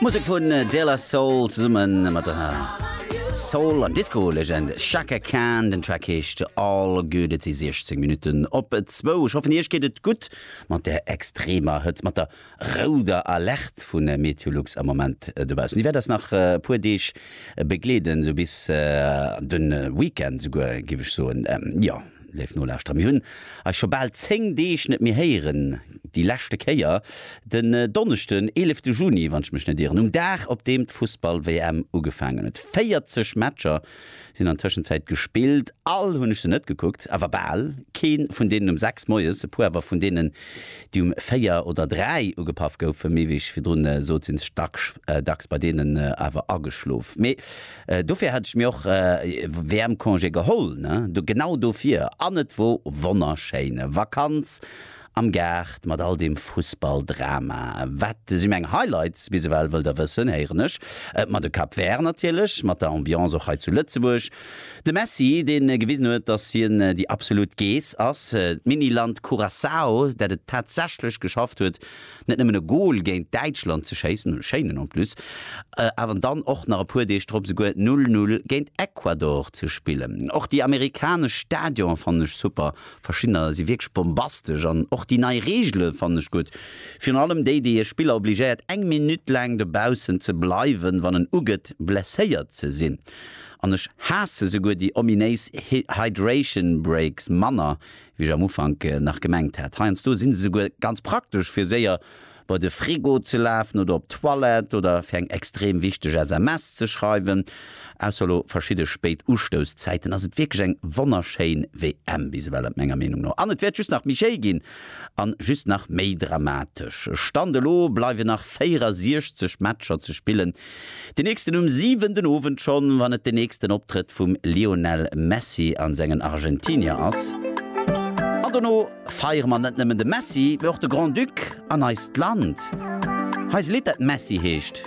Musek vun De La Soul zesummen mat der Soul an Disco-Legend Chaka Khan, den Track heescht All Good, et si 16 Minutten op zwou. Ech hoffen Iech geet et gutt mat der extremer Hëtzt, mat der rouder Alerte vu Meteolux am Moment dobaussen. Déi wäert eis nach e puer Deeg begleeden, esou bis an de Weekend esouguer, géif ech soen, jo. Léif Nolauschterer, mir hunn eis scho bal 10 Deeg net méi héieren. Déi leschte Kéier den Donneschden, 11 Juni, wann ech mech net ieren, um Dag op deem d'Fussball-WM ugefaangen huet. 40 Matcher sinn an Tëschenzäit gespillt. All hunn ech se net gekuckt, awer bal kee vun deenen um 6 moies. E puer awer vun deenen, déi um 4 oder 3 ugepaff goufen. Méi wéi ech virdrun sot, sinn ech dacks bei deenen awer ageschlof. Mee Dofir hat ech mir och WM Congé geholl, genau dofir, an et wor wonnerschéin, Vakanz am Gaart mat all dem Fussball Drama. Wat si meng Highlights bis ewell wëll der wëssen, héieren ech mer de Cap Vert natierlech, mat der Ambiance och hei zu Lëtzebuerg, de Messi dee gewisen huet dass hien déi absolut Geess ass, d'Miniland Curaçao dat et tatsächlech geschafft huet net nëmmen e Gol géint Däitschland ze schéissen, e schéinen en plus, awer dann och nach e puer Deeg drop souguer Null Null géint Ecuador ze spillen. Och déi amerikanesch Stadionen fannen ech super, verschiddener si wierklech bombastesch an och déi nei Reegele fannen ech gutt. Virun allem déi, déi e Spiller obligéiert eng Minutt laang dobaussen ze bleiwen, wann en ugëtt blesséiert ze sinn. An ech haasse souguer déi ominéis Hydration Breaks manner wéi ech am Ufank nach gemengt hat. Heiansdo sinn se souguer ganz praktesch, fir séier bei de Frigo ze lafen oder op d'Toilette oder fir eng extrem wichteg SMS ze schreiwen. Ausser elo verschidde spéit Ustousszäiten ass et wierklech eng wonnerschéin WM bis ewell, menger Meenung no. An et wäert just nach méi schéi ginn an just nach méi dramatesch. Stand elo bleiwen nach 64 Matcher ze spillen. Deen nächsten um 7 den Owend schonn, wann et den nächsten Optrëtt vum Lionel Messi an sengen Argentinier ass. An dono feiere mer net nëmmen de Messi, mee och de Grand-Duc an eist Land. Eis Lidd dat Messi heescht.